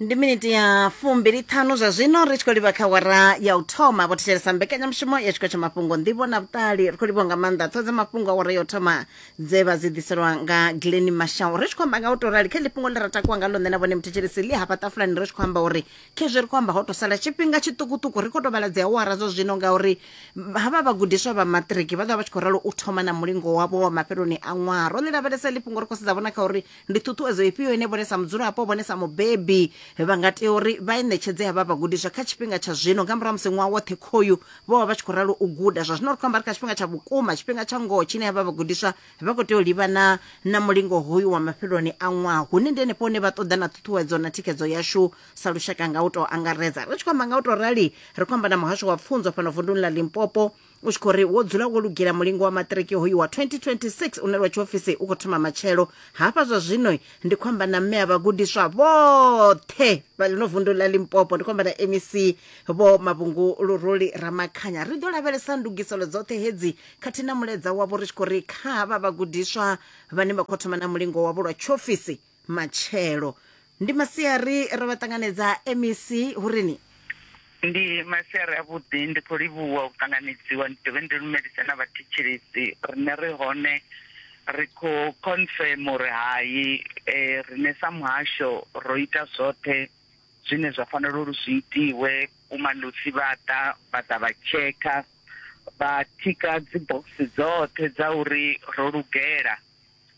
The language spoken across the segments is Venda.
ndi miniti ya fumbili ṱhanu zwa zwino ri tshi khou livha kha wara ya u thoma vho thetshelesa mbekanyamushumo ya tshiko tsha mafhungo nḓivho na vhuṱali ri khou livhiwa nga maanḓa ṱho dza mafhungo a wara ya u thoma dze vha dzi ḓiselwa nga glen mashau ri tshi khou amba nga u tou rali kha ḽi fhungo ḽi ra takuwa nga ḽone na vhone muthetshelesi ḽi hafha ṱafulani ri tshi khou amba uri khezwi ri khou amba ho tou sala tshifhinga tshiṱukuṱuku ri khou tou vhala dzi awara zwa zwino ngauri havha vhagudiswa vha maṱiriki vha ḓovha vha tshi khou ralo u thoma na mulingo wavho wa mafheloni a ṅwaha ro ḽi lavhelesa ḽi fhungo ri khou sedza vhona kha uri ndi ṱhuṱhuwedzo ifhio ine vhone sa mudzulapo vhone sa mubebi vha nga tea uri vha i ṋetshedze havha vhagudiswa kha tshifhinga tsha zwino nga murahu ha musi ṅwaha woṱhe khoyu vho vha vha tshi khou ralo u guda zwa zwino ri khou amba ri kha tshifhinga tsha vhukuma tshifhinga tsha ngoho tshine havha vhagudiswa vha khou tea u livhana na mulingo hoyu wa mafheloni a ṅwaha hune ndi henefho hune vha ṱoḓa na ṱhuṱhuwedzo na thikhedzo yashu sa lushaka nga u tou angaredza ri tshi khou amba nga u tou rali ri khou amba na muhasho wa pfunzo fhano vunduni ḽa limpopo u tshi khou ri wo dzula wo lugela mulingo wa maṱiriki hoyu wa 2026 une lwa tshiofisi u khou thoma matshelo hafha zwa zwino ndi khou amba na mme a vhagudiswa vhoṱhe vha ḽino vundu ḽa limpopo ndi khou amba na mec vho mavhungu luruli ramakhanya ri ḓo lavhelesa ndugiselo dzoṱhe hedzi khathihi na muledza wavho ri tshi khou ri kha havha vhagudiswa vhane vha khou thoma na mulingo wavho lwa tshiofisi matshelo ndi masiari ro vha ṱanganedza mec hu ri ni ndi masiari avhuḓi ndi khou livhuwa u ṱanganedziwa ndi dovhe ndi lumelise na vhathetshelesi rine ri hone ri khou confirm uri hai um rine sa muhasho ro ita zwoṱhe zwine zwa fanela uri zwi itiwe vhumalosi vha ḓa vha ḓa vha tshekha vha thika dzi box dzoṱhe dza uri ro lugela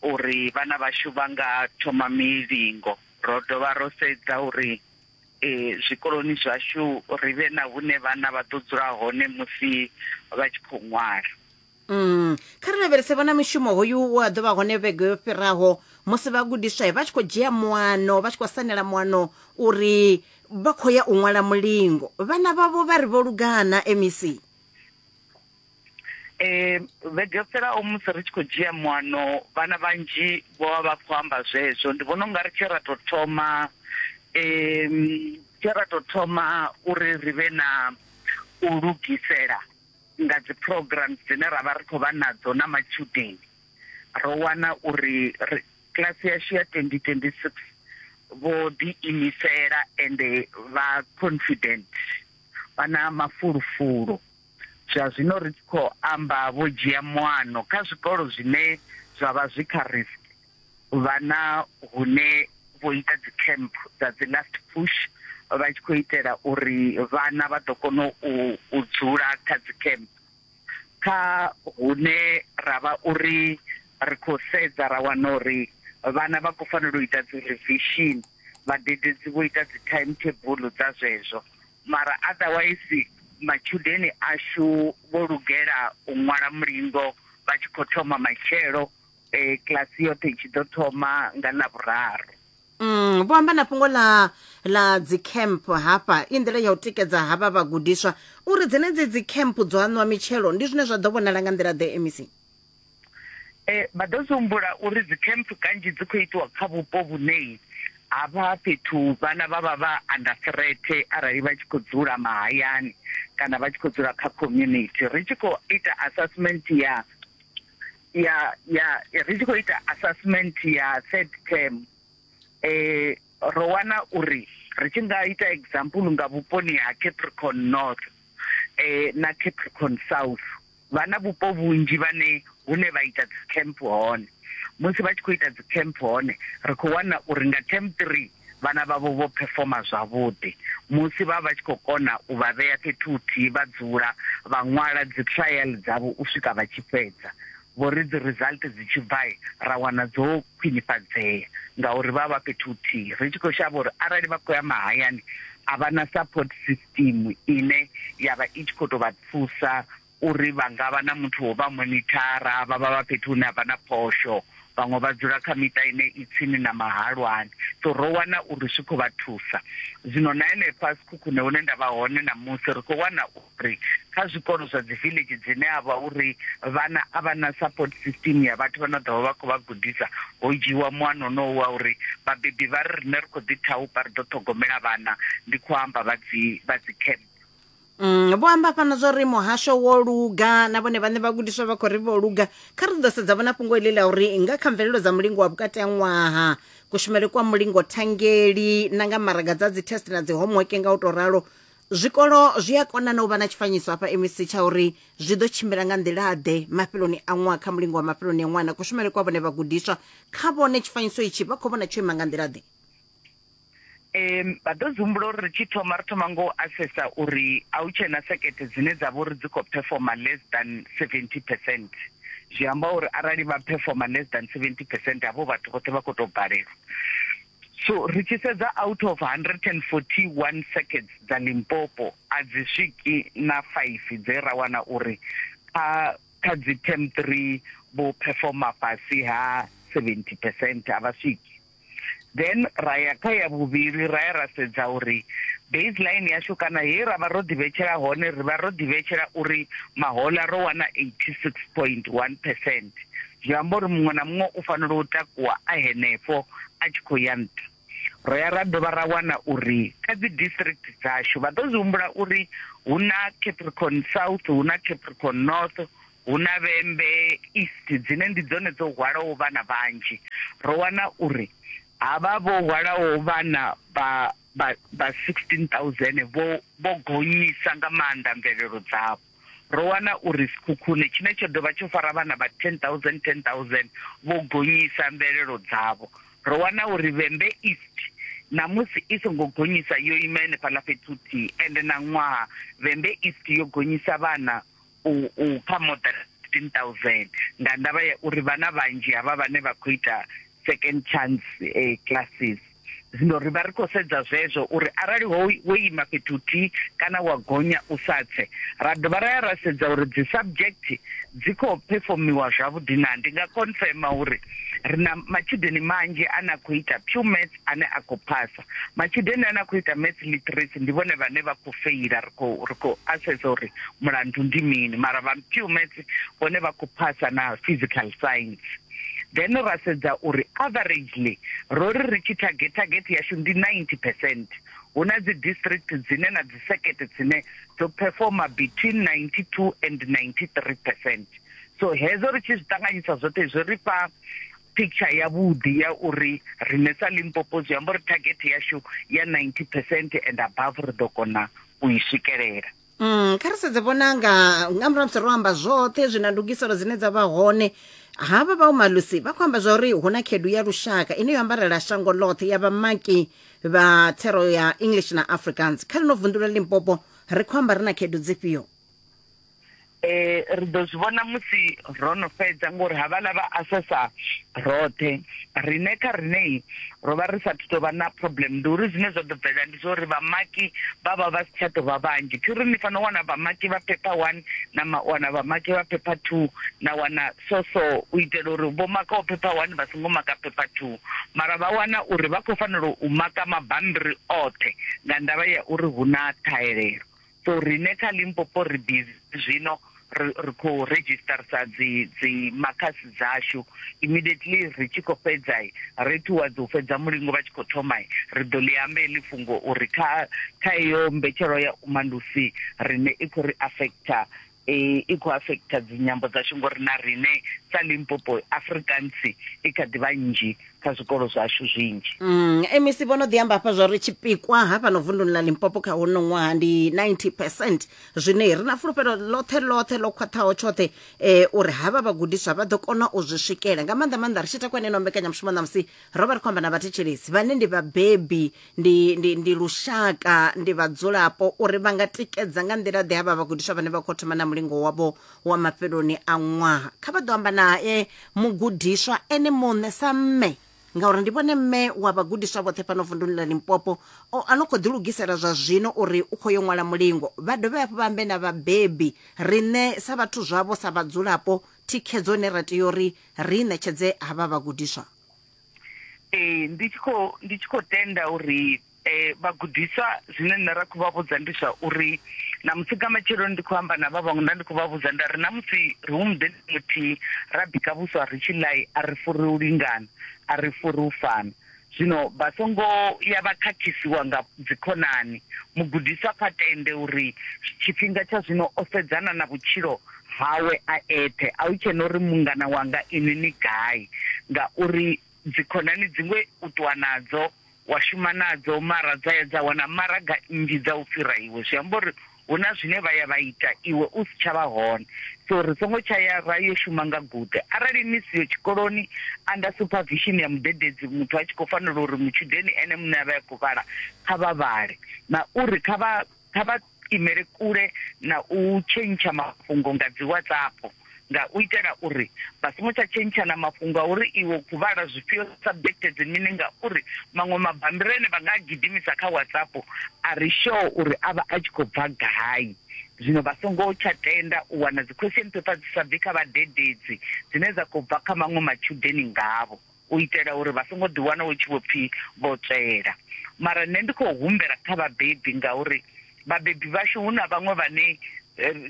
uri vhana vhashu vha nga thoma milingo. Ro dovha ro sedza uri zwikoloni zwashu ri vhe na hune vhana vha ḓo dzula hone musi vha tshi khou ṅwala. Mm. Kha ri lavhelese vhona mushumo hoyu we wa ḓo vha hone vhege yo fhiraho musi vhagudiswa vha tshi khou dzhia muano, vha tshi khou sanela muano uri vha khou ya u ṅwala mulingo. Vhana vhavho vha ri vho lugana, MEC. eh vhege fhelaho musi ri tshi khou dzhia muano vhana vhanzhi vho vha vha khou amba zwezwo ndi vhona ungari tshe ra tou thoma eh tshe ra tou thoma uri ri vhe na u lugisela nga dzi programs dzine ra vha ri khou vha nadzo na matshudeni ro wana uri kiḽasi yashu ya 2026 vho ḓi imisela ende vha confident vha na mafulufulo Zwa zwino ri tshi khou amba vho dzhia muano kha zwikolo zwine zwa vha zwi kha risk, vha na hune vho ita dzi camp dza dzi last push vha tshi khou itela uri vhana vha ḓo kona u dzula kha dzi camp. Kha hune ra vha uri ri khou sedza ra wana uri vhana vha khou fanela u ita dzi revision, vhadededzi vho ita dzi timetable dza zwezwo Mara otherwise matshudeni ashu vho lugela u ṅwala mulingo vha tshi khou thoma matshelo, kiḽasi yoṱhe i tshi ḓo thoma nga Ḽavhuraru. Mm, vho amba na fhungo ḽa ḽa dzicamp hafha i nḓila ya u tikedza havha vhagudiswa uri dzenedzi dzicamp dzo aṋwa mitshelo ndi zwine zwa ḓo vhonala nga nḓila ḓe MEC. E, vha ḓo zwi humbula uri dzikhempfu kanzhi dzi khou itiwa kha vhupo vhune havha fhethu vhana vha vha vha under threat arali vha tshi khou dzula mahayani kana vha tshi khou dzula kha community ri tshi khou ita assessment ya ya ya ri tshi khou ita assessment ya third term eh ro wana uri ri tshi nga ita example nga vhuponi ha Capricorn North eh na Capricorn South vha na vhupo vhunzhi vhane hune vha ita dzi camp hone musi vha tshi khou ita dzi camp hone ri khou wana uri nga term 3 vhana vhavho vho performa zwavhuḓi musi vha vha tshi khou kona u vha vhea fhethu huthihi vha dzula vha ṅwala dzi trial dzavho u swika vha tshi fhedza vho ri dzi result dzi tshi bva ra wana dzo khwinifhadzea ngauri vha vha fhethu huthihi ri tshi khou shavha uri arali vha khou ya mahayani a vha na support system tsimu ine ya vha i tshi khou tou vha thusa uri vha nga vha na muthu wo vha monithara, vha vha vha fhethu hune ha vha na phosho, vhaṅwe vha dzula kha miṱa ine i tsini na mahalwani. So ro wana uri zwi khou vha thusa. Zwino na henefha Sekhukhune hune nda vha hone ṋamusi ri khou wana uri kha zwikolo zwa dzi village dzine a vha uri vhana a vha na support system ya vhathu vha no ḓovha vha khou vha gudisa ho dzhiiwa muano onowu wa uri vhabebi vha ri rine ri khou ḓi thaupa ri ḓo ṱhogomela vhana ndi khou amba vha dzi vha dzi camp Mm, vho amba fhano zwa uri muhasho wo luga na vhone vhaṋe vhagudiswa vha khou ri vho luga kha ri ḓo sedza vhona fhungo iḽi ḽa uri nga kha mvelelo dza mulingo wa vhukati ha ṅwaha kushumele kwa mulingo thangeli na nga maraga dza dzi test na dzi homework nga u tou ralo Zwikolo zwi a kona na u vha na tshifanyiso hafha MEC tsha uri zwi ḓo tshimbila nga nḓila-ḓe mafheloni a ṅwaha kha mulingo wa mafheloni a ṅwaha na kushumele kwa vhone vhagudiswa. Kha vhone tshifanyiso itshi vha khou vhona tsho ima nga nḓila-ḓe? Ee, vha ḓo zwi humbula uri ri tshi thoma ri thoma nga u asesa uri a hu tshe na sekete dzine dza vha uri dzi khou phefoma less than 70 percent. Zwi amba uri arali vha phefoma less than 70 percent havho vhathu vhoṱhe vha khou tou balelwa. So ri tshi sedza out of 141 circuits dza Limpopo a dzi swiki na 5 dze ra wana uri kha kha dzi term 3 vho performer fhasi ha 70 percent a vha swiki then ra ya kha ya vhuvhili ra ya ra sedza uri baseline yashu kana he ra vha ro ḓivhetshela hone ri vha ro ḓivhetshela uri mahola ro wana 86.1 percent Zwi amba uri muṅwe na muṅwe u fanela u takuwa a henefho a tshi khou ya nṱha. Ro ya ra dovha ra wana uri kha dzi district dzashu vha ḓo zwi humbula uri hu na Capricorn South, hu na Capricorn North, hu na Vhembe East dzine ndi dzone dzo hwalaho vhana vhanzhi. Ro wana uri havha vho hwalaho vhana vha vha vha 16000 vho vho gonyisa nga maanḓa mvelelo dzavho. ro wana uri Sekhukhune, tshine tsho dovha tsho fara vhana vha 10,000 10,000, vho gonyisa mvelelo dzavho. Ro wana uri Vhembe East ṋamusi i songo gonyisa, yo ima henefhaḽa fhethu huthihi. Ende na ṅwaha Vhembe East yo gonyisa vhana u u kha more than 15,000 nga ndavha ya uri vhana vhanzhi havha vhane vha khou ita second chance classes, Zwino ri vha ri khou sedza zwezwo uri arali ho wo ima fhethu huthihi kana wa gonya u sa tse, ra dovha ra ya ra sedza uri dzi subject dzi khou phefomiwa zwavhuḓi naa. Ndi nga confirmer uri ri na matshudeni manzhi ane a khou ita pure maths ane a khou phasa. Matshudeni ane a khou ita maths literacy ndi vhone vhane vha khou feila, ri khou ri khou assesser uri mulandu ndi mini mara vha pure maths vhone vha khou phasa na physical science. then ra sedza uri averagely ro ri ri tshi target target yashu ndi 90 percent hu na dzi district dzine na dzi sekete dzine dzo performa between 92 and 93 percent so hezo ri tshi zwi ṱanganyisa zwoṱhe zwi ri fha picture ya vhudi ya uri rine sa limpopo zwi amba uri target yashu ya 90 percent and above ri ḓo kona u i swikelela Mm, kha ri sedze vhonanga nga murahu musi ro amba zwoṱhe zwi na ndugiselo dzine dza vha hone havha vha umalusi vha khou amba zwa uri hu na khedu ya lushaka ine yo ambarela shango ḽoṱhe ya vhamaki vha thero ya english na africans kha lino vunḓu la limpopo ri khou amba ri na khedu dzifhio eh ri ḓo zwi vhona musi ro no fhedza ngori havhaḽa vha asesa roṱhe riṋe kha riṋei ro vha ri sathu tou vha na problem ndi uri zwine zwa ḓo bvelela ndi zwa uri vhamaki vha vha vha si tsha tou vha vhanzhi thi uri ni fanela u wana vhamaki vha phepha one na wana vhamaki vha phepha two na wana so so u itela uri vho makaho phepha one vha songo maka phepha two mara vha wana uri vha khou fanela u maka mabambiri oṱhe nga ndavha ya uri hu na ṱhahelelo So rine kha Limpopo ri busy zwino ri khou registersa dzi dzi makhasi dzashu immediately ri tshi khou fhedza ri towards u fhedza mulingo vha tshi khou thoma ri ḓo ḽi amba heḽi fhungo uri kha kha iyo mbetshelo ya umalusi rine i khou ri affecta i i khou afekitha dzinyambo dzashu ngori na riṋe sa limpopo afrikansi i kha ḓi vha nnzhi kha zwikolo zwashu zwinzhi mm, mec vho no ḓi amba hafha zwa ri tshipikwa hafha no vunduni ḽa limpopo kha hono ṅwaha ndi 90 percent zwine ri na fulufhelo ḽoṱhe ḽoṱhe ḽo khwaṱhaho tshoṱhe um eh, uri havha vhagudiswa vha ḓo kona u zwi swikela nga maanḓa maanḓa ri tshi takwa eneno mbekanyamushumo ṋamusi ro vha ri khou amba na vhathetshelesi vhane ndi vhabebi ndi, ndi, ndi lushaka ndi vhadzulapo uri vha nga tikedza nga nḓila ḓe havha vhagudiswa vhane vha khou thoma na mulingo wavho wa mafheloni a ṅwaha kha vha ḓo amba nae mugudiswa ene muṋe sa mme ngauri ndi vhone mme wa vhagudiswa vhoṱhe fhano vunduni ḽa limpopo o ano khou ḓilugisela zwa zwino uri u khou yo ṅwala mulingo vha dovhe hafhu vha ambe na vhabebi riṋe sa vhathu zwavho sa vhadzulapo thikhedzo ine ra tea uri ri i ṋetshedze havha vhagudiswa ee ndi tshi khou ndi tshi khou tenda uri eh vhagudiswa zwine nṋe ra khou vha vhudza ndi zwa uri na musi nga matshelo ndi khou amba na vha vhaṅwe nda ndi khou vha vhudza nda ri na musi ri hu muḓeni muthihi ra bika vhuswa ri tshi ḽai a ri furi u lingana a ri furi u fana zwino vha songo ya vha khakhisiwa nga dzikhonani mugudiswa kha tende uri tshifhinga tsha zwino o sedzana na vhutshilo hawe a eṱhe, a hu tshe na uri mungana wanga inwi ni gai, ngauri dzikhonani dziṅwe u ṱuwa nadzo, wa shuma nadzo, mara dza ya dza wana maraga nnzhi dza u fhira iwe. Zwi amba uri hu na zwine vha ya vha ita iwe u si tsha vha hone. So ri songo tsha ya ra yo shuma nga guṱe. Arali ni siho tshikoloni, anda supervision ya mudededzi, muthu a tshi khou fanela uri mutshudeni ene muṋe a vhe a khou vhala, kha vha vhale na uri kha vha. kha vha imele kule na u tshentsha mafhungo nga dzi WhatsApp nga u itela uri vha songo tsha tshentshana mafhungo a uri iwe khou vhala zwifhio subject dzi mini ngauri maṅwe mabambiri ane vha nga gidimisa kha WhatsApp a ri sure uri a vha a tshi khou bva gai zwino vha songo tsha tenda u wana dzi question paper dzi sa bvi kha vhadededzi dzine dza khou bva kha maṅwe matshudeni ngavho. u itela uri vha songo ḓi wana hu tshi vho pfi vho tswela. Mara nṋe ndi khou humbela kha vhabebi ngauri vhabebi vhashu hu na vhaṅwe vhane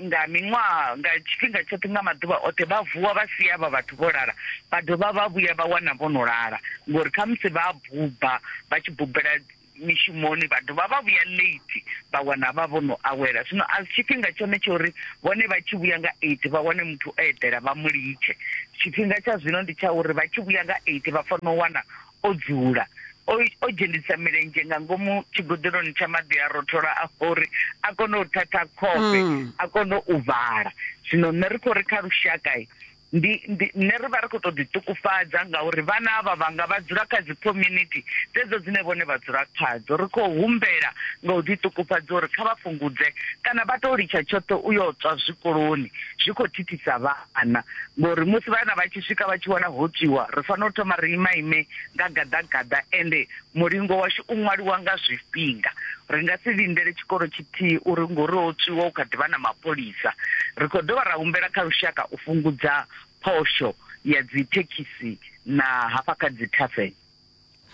nga miṅwaha, nga tshifhinga tshoṱhe, nga maḓuvha oṱhe vha vuwa vha sia avha vhathu vho lala vha dovha vha vhuya vha wana vho no lala ngori khamusi vha a buba vha tshi bubela mishumoni vha dovha vha vhuya late vha wana vha vho no awela. Zwino a si tshifhinga tshone tsha uri vhone vha tshi vhuya nga eight vha wane muthu o eḓela vha mu litshe. Tshifhinga tsha zwino ndi tsha uri vha tshi vhuya nga eight vha fanela u wana o dzula o o dzhenisa milenzhe nga ngomu tshigoḓeloni tsha maḓi a rothola a uri a kone u thatha khofhe a kone u vhala. Zwino nṋe ri khou ri kha lushaka ndi ndi nṋe ri vha ri khou tou ḓiṱukufhadza ngauri vhana avha vhanga vha dzula kha dzi community dzedzo dzine vhone vha dzula khadzo ri khou humbela nga u ḓiṱukufhadza uri kha vha fhungudze kana vha tou litsha tshoṱhe u yo tswa zwikoloni zwi khou thithisa vhana ngori musi vhana vha tshi swika vha tshi wana ho tswiwa ri fanela u thoma ri ima ime nga gaḓagaḓa ende Mulingo washu u ṅwaliwa nga zwifhinga. Ri nga si lindele tshikolo tshithihi uri ngori ho tswiwa hu kha ḓi vha na mapholisa. Ri khou dovha ra humbela kha lushaka u fhungudza phosho ya dzithekhisi na hafha kha dzithaveni.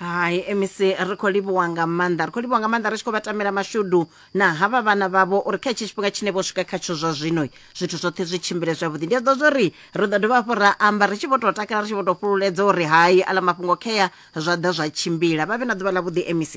Hai MEC ri khou livhuwa nga maanḓa, ri khou livhuwa nga maanḓa ri tshi khou vha tamela mashudu na havha vhana vhavho uri kha hetshi tshifhinga tshine vho swika khatsho zwa zwino zwithu zwoṱhe zwi tshimbile zwavhuḓi. Ndi a ḓivha zwa uri ri ḓo dovha hafhu ra amba ri tshi vho tou takala ri tshi vho tou fhululedza uri hai aḽa mafhungo khea zwa ḓa zwa tshimbila vha vhe na ḓuvha ḽa vhuḓi mec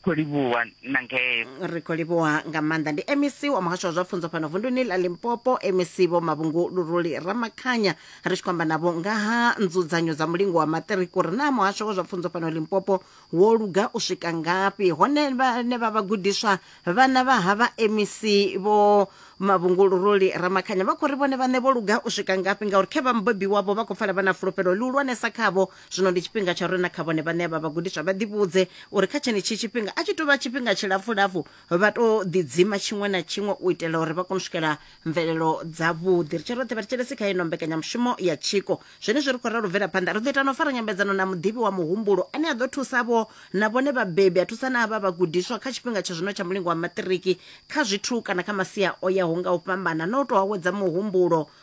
khou livhuwa na ngeo ri khou livhuwa nga maanḓa ndi mec wa muhasho wa zwa pfunzo fhano vunduni ḽa limpopo mec vho mavhungu luruli ramakhanya ri tshi khou amba navho nga ha nzudzanyo dza mulingo wa maṱiriki uri naa muhasho wa zwa pfunzo fhano limpopo wo luga u swika ngafhi hone vhane vha vhagudiswa vhana vha ha vha mec vho mavhungu luruli ramakhanya vha khou ri vhone vhaṋe vho luga u swika ngafhi ngauri khe vha mubebi wavho vha khou pfala vha na fulufhelo ḽihulwanesa khavho Zwino ndi tshifhinga tsha uri na kha vhone vhaṋe vha vhagudiswa vha ḓivhudze uri kha tshenetshi tshifhinga a tshi tou vha tshifhinga tshilapfulapfu vha tou ḓidzima tshiṅwe na tshiṅwe u itela uri vha kone u swikela mvelelo dzavhuḓi. Ri tshe roṱhe vhathetshelesi kha ino mbekanyamushumo ya tshiko. Zwenezwi ri khou ralo u bvela phanḓa, ri ḓo ita na u fara nyambedzano na muḓivhi wa muhumbulo ane a ḓo thusa vho na vhone vhabebi, a thusa na havha vhagudiswa kha tshifhinga tsha zwino tsha mulingo wa maṱiriki kha zwithu kana kha masia o yaho nga u fhambana na u tou awedza muhumbulo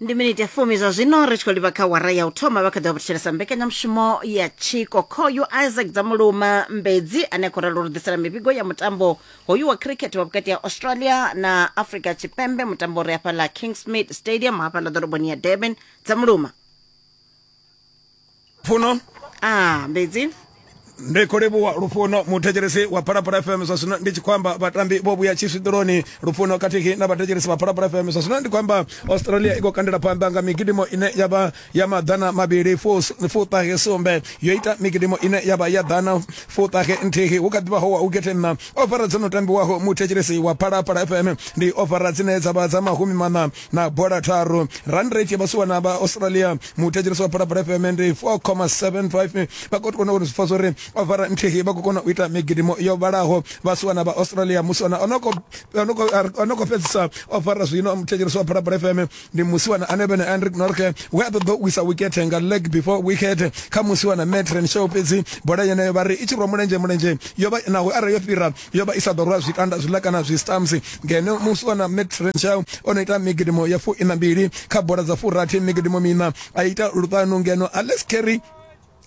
ndi miniti ya fumi zwa zwino ri tshi khou livha kha wara ya u thoma vha kha ḓi vha vhutshelesa mbekanyamushumo ya tshiko khoyu isaac dzamuluma mbedzi ane a khou ralo ri ḓisela mivhigo ya mutambo hoyu wa cricket wa vhukati ha australia na africa tshipembe mutambo uri hafhaḽa kingsmid stadium hafhaḽa ḓoroboni ya durban dzamuluma funo ah mbedzi ndi khou livhuwa lufuno muthetshelesi wa phalaphala fm zwa zwino ndi tshi khou amba vhatambi vho vhuya tshiswiḓoloni lufuno khathihi na vhathetshelesi vha phalaphala fm zwa zwino ndi khou amba australia i khou kandela phanḓa nga migidimo ine ya vha ya maḓana mavhili fuṱahe sumbe yo ita migidimo ine ya vha ya ḓana fuṱahe nthihi hu kha ḓivha ho wa u gethenna ofara dzo no tambiwaho muthetshelesi wa phalaphala fm ndi ofara dzine dza vha dza mahumi maṋa na bola tharu run rate vha suwa na vha australia muthetshelesi wa phalaphala fm ndi 4,75 vha khou kona uri zwi pfa zwori ovara nthihi vha khou kona u ita migidimo yo vhalaho vha suwa na vha australia musi wana ono khou fhedzisa ovara zwino muthetshelesi wa phalaphala fm ndi musi wana ane vhene andrik norke we a ṱoḓa u wisa wikethe nga leg before wicket kha musi wana metren show fhedzi bola yeneyo vha ri i tshi rwa mulenzhe mulenzhe yo vha naho arali yo fhira yo vha i sa ḓo rwa zwikanda zwiḽa kana zwistamps ngeno muswa na matt renshaw o no ita migidimo ya fu ina mbili kha bola dza furathi migidimo mina a ita luṱanu ngeno alex carry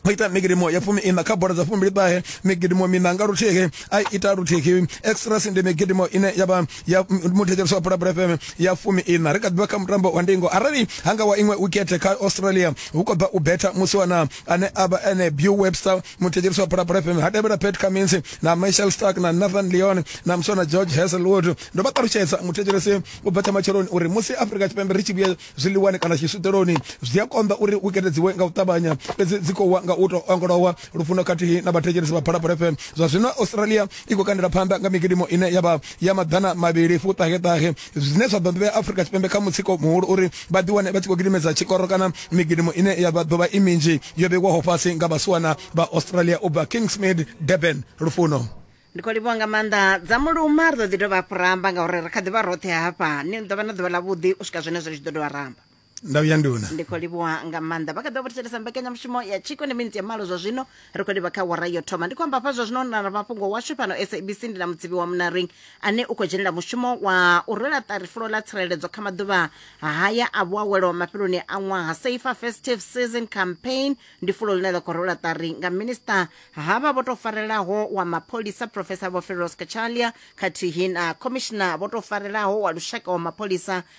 o ita migidimo ya fumi ina kha bola dza fumbili ṱahe migidimo mina nga luthihi a ita luthihi extras ndi migidimo ine ya vha ya muthetshelesi wa pulapula fm ya fumi ina ri kha ḓivha kha mutambo wa ndingo arali hanga wa iṅwe wikete kha australia hu khou bva u betha musi wana ane a vha ene Beau Webster muthetshelisi wa Phalaphala FM ha tevhela Pat Cummins na Michael Stark na Nathan Leon na muswana George Hazelwood ndo vha ṱalutshedza muthetshelesi u bva tsha matsheloni uri musi Afrika Tshipembe ri tshi vhuya zwiḽiwani kana tshiswiṱeloni zwi a konḓa uri wikende dziwe nga u ṱavhanya fhedzi dzi khou wa nga u tou ongolowa lufuno khathihi na vhathetshelesi vha Phalaphala FM zwa zwino Australia i khou kandela phanḓa nga migidimo ine ya vha ya maḓana mavhili fuṱaheṱahe zwine zwa ḓo ḓivhea afrika tshipembe kha mutsiko muhulu uri vha ḓiwane vha tshi khou gidimedza tshikoro kana migidimo ine ya ḓo vha i minzhi yo vheiwaho fhasi nga vhasiwana vha australia u bva kingsmid durban lufuno ndi khou livhuwa nga maanḓa dza muluma ri ḓo ḓi dovha hafhu ramba ngauri ri kha ḓi vha roṱhe hafha ni ḓo vha na ḓuvha ḽavhuḓi u swika zwenezwo zwi ḓo dovha ramba ndau ya nduna ndi khou livhuwa nga maanḓa vha kha ḓo vhuthetshelesa mbekanyamushumo ya tshiko ndi minitsi ya malo zwa zwino ri khou livha kha wara yo thoma ndi khou amba hafha zwa zwino na na mafhungo washu fhano sabc ndi na mudzivi wa munaring ane u khou dzhenela mushumo wa u rwela ṱari fulo ḽa tsireledzo kha maḓuvha haya a vhuawelo mafheloni a ṅwaha safer festive season campaign ndi fulo ḽine ḽa khou rwela ṱari nga minista havha vho tou farelaho wa mapholisa professor vho feros kachalia khathihi na commissioner vho tou farelaho wa lushaka wa mapholisa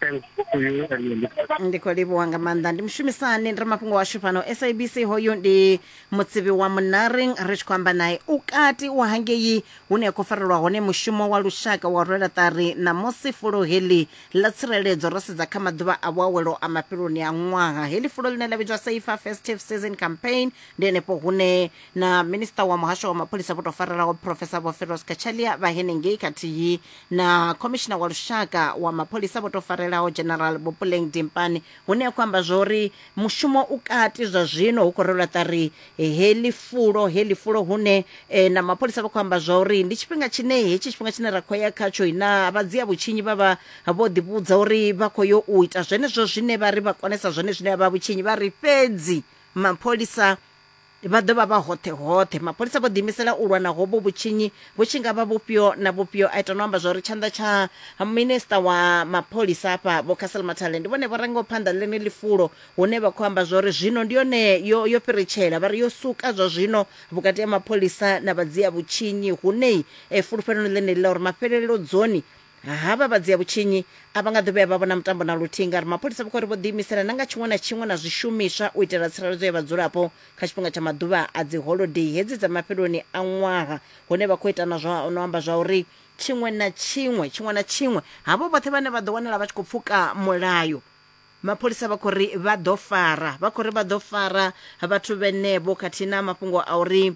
thanks to you and your listeners. ndi khou livhuwa nga maanḓa ndi mushumisani ndi ri mafhungo washu fhano sabc hoyu ndi mutsivi wa munaring ri tshi khou amba naye u kati u hangei hune a khou farelwa hone mushumo wa lushaka wa rwela ṱari ṋamusi fulo heḽi ḽa tsireledzo ro sedza kha maḓuvha a vhuawelo a mafheloni a ṅwaha heḽi fulo ḽine ḽa vhidzwa safer festive season campaign ndi henefho hune na minista wa muhasho wa mapholisa vho tou farelaho profesa vho feros kachalia vha henengei khathihi na khomishina wa lushaka wa mapholisa vho tou farelaho general bopuleng dimpane hune a khou amba zwa uri mushumo u kati zwa zwino hu khou rwelwa ṱari heḽi fulo heḽi fulo hune eh, na mapholisa vha khou amba zwa uri ndi tshifhinga tshine hetshi tshifhinga tshine ra khou ya khatsho na vha dzia vhutshinyi vha vha vho ḓivhudza uri vha khou yo u ita zwenezwo zwine vha ri vha konesa zwone zwine vha vhutshinyi vha ri fhedzi mapholisa vha ḓo vha vha hoṱhe hoṱhe mapholisa vho ḓiimisela u lwa na hovho vhutshinyi vhu tshi nga vha vhufhio na vhufhio a ita no amba zwauri tshanḓa tsha minista wa mapholisa afha vho castle mathale ndi vhone vho rangaho phanḓa ḽene ḽifulo hune vha khou amba zwauri zwino ndi yone yo, yo fhiritshela vha ri yo suka zwa zwino vhukati ha mapholisa na vhadzia vhutshinyi hunei e, fulufheloni ḽeneḽi ḽa uri mafhelelo dzoni havha vha dzia vhutshinyi a vha nga ḓo vhuya vha vhona mutambo na luthihi ngauri mapholisa vha khou ri vho ḓiimisela na nga tshiṅwe na tshiṅwe na zwishumiswa u itela tsireledzo ya vhadzulapo kha tshifhinga tsha maḓuvha a dzi holodei hedzi dza mafheloni a ṅwaha hune vha khou ita na zwa no amba zwa uri tshiṅwe na tshiṅwe tshiṅwe na tshiṅwe havho vhoṱhe vhane vha ḓo wanala vha tshi khou pfuka mulayo mapholisa vha khou ri vha ḓo fara vha khou ri vha ḓo fara vhathu vhenevho khathihi na mafhungo a uri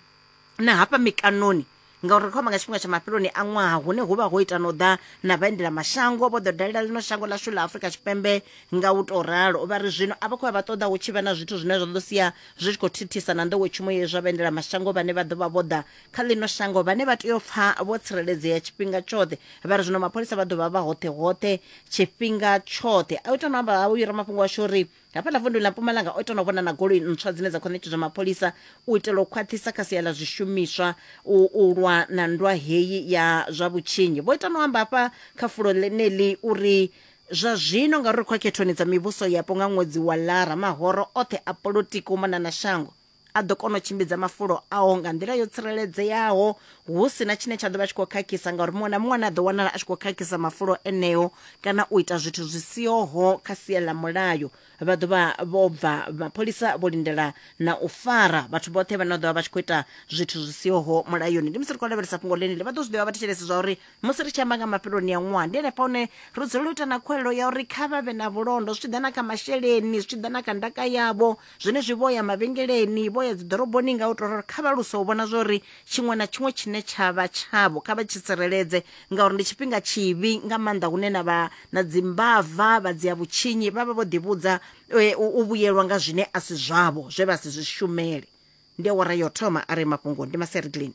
na hafha mikanoni ngauri ri khou amba nga tshifhinga tsha mafheloni a ṅwaha hune hu vha ho ita na u ḓa na vhaendela mashango vho ḓo dalela ḽino shango ḽashu ḽa afurika tshipembe nga u tou ralo vha ri zwino a vha khou ya vha ṱoḓa hu tshi vha na zwithu zwine zwa ḓo sia zwi tshi khou thithisa na nḓowetshumo ye zwa vhaendela mashango vhane vha ḓo vha vho ḓa kha ḽino shango vhane vha tea u pfha vho tsireledzea tshifhinga tshoṱhe vha ri zwino mapholisa vha ḓo vha vha hoṱhe hoṱhe tshifhinga tshoṱhe a u ita no amba ha uyu ramafhungo washu uri hafha ḽa vundu ḽa mpumalanga o ita no vhona na goloi ntswa dzine dza khou ṋetshedzwa mapholisa u itela u khwaṱhisa kha sia ḽa zwishumiswa u, u lwa na ndwa heyi ya zwa vhutshinyi vho ita no amba hafha kha fulo ḽeneḽi uri zwa zwino ngauri ri khou ya khethoni dza mivhuso yapo nga ṅwedzi wa lara mahoro oṱhe a polotiki u mona na shango a ḓo kona u tshimbidza mafulo ao nga nḓila yo tsireledzeaho hu si na tshine tsha ḓo vha tshi khou khakhisa ngauri muṅwe na muṅwe ane a ḓo wanala a tshi khou khakhisa mafulo eneo kana u ita zwithu zwi sihoho kha sia ḽa mulayo vha ḓo vha vho bva mapholisa vho lindela na u fara vhathu vhoṱhe vhane vha ḓo vha vha tshi khou ita zwithu zwi sihoho mulayoni ndi musi ri khou lavhelesa fhungo ḽeneli vha ḓo zwi ḓivha vha thetshelesi zwa uri musi ri tshi amba nga mafheloni a ṅwaha ndi henefha hune ri dzulela u ita na khuwelelo ya uri kha vha vhe na vhulondo zwi tshi ḓa na kha masheleni zwi tshi ḓa na kha ndaka yavho Zwenezwi vho ya mavhengeleni, vho ya dziḓoroboni nga u tou ralo, kha vha luse u vhona zwa uri tshiṅwe na tshiṅwe tshine tsha vha tshavho kha vha tshi tsireledze, ngauri ndi tshifhinga tshivhi nga maanḓa hune na vha na dzimbava, vha dzia vhutshinyi, vha vha vho ḓivhudza u vhuyelwa nga zwine a si zwavho, zwe vha si zwi shumele. Ndi awara ya u thoma a re mafhungo. Ndi Masereglin.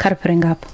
kha ri fhire ngafho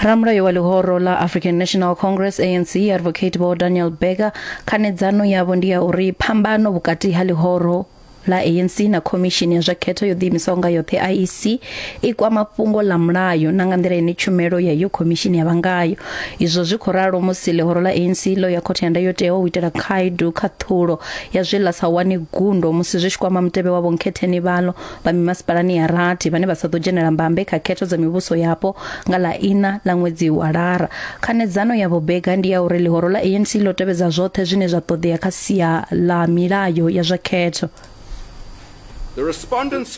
ramulayo wa ḽihoro ḽa african national congress anc advocate vho daniel berger khanedzano yavho ndi ya uri phambano vhukati ha ḽihoro ḽa ANC na khomishini ya zwa khetho yo ḓiimisaho nga yoṱhe IEC i kwama fhungo ḽa mulayo na nga nḓila ine tshumelo ya yo khomishini ya vha ngayo izwo zwi khou ralo musi ḽihoro ḽa ANC ḽo ya khothe ya ndayotewa u itela khaedu khaṱhulo ya zwe ḽa sa wane gundo musi zwi tshi kwama mutevhe wa vhonkhetheni vhalo vha mimasipalani ya rathi vhane vha sa ḓo dzhenela mbambe kha khetho dza mivhuso yapo nga ḽa ina ḽa ṅwedzi wa lara khanedzano ya vhobega ndi ya uri ḽihoro ḽa anc ḽo tevhedza zwoṱhe zwine zwa ṱoḓea kha sia ḽa milayo ya zwa khetho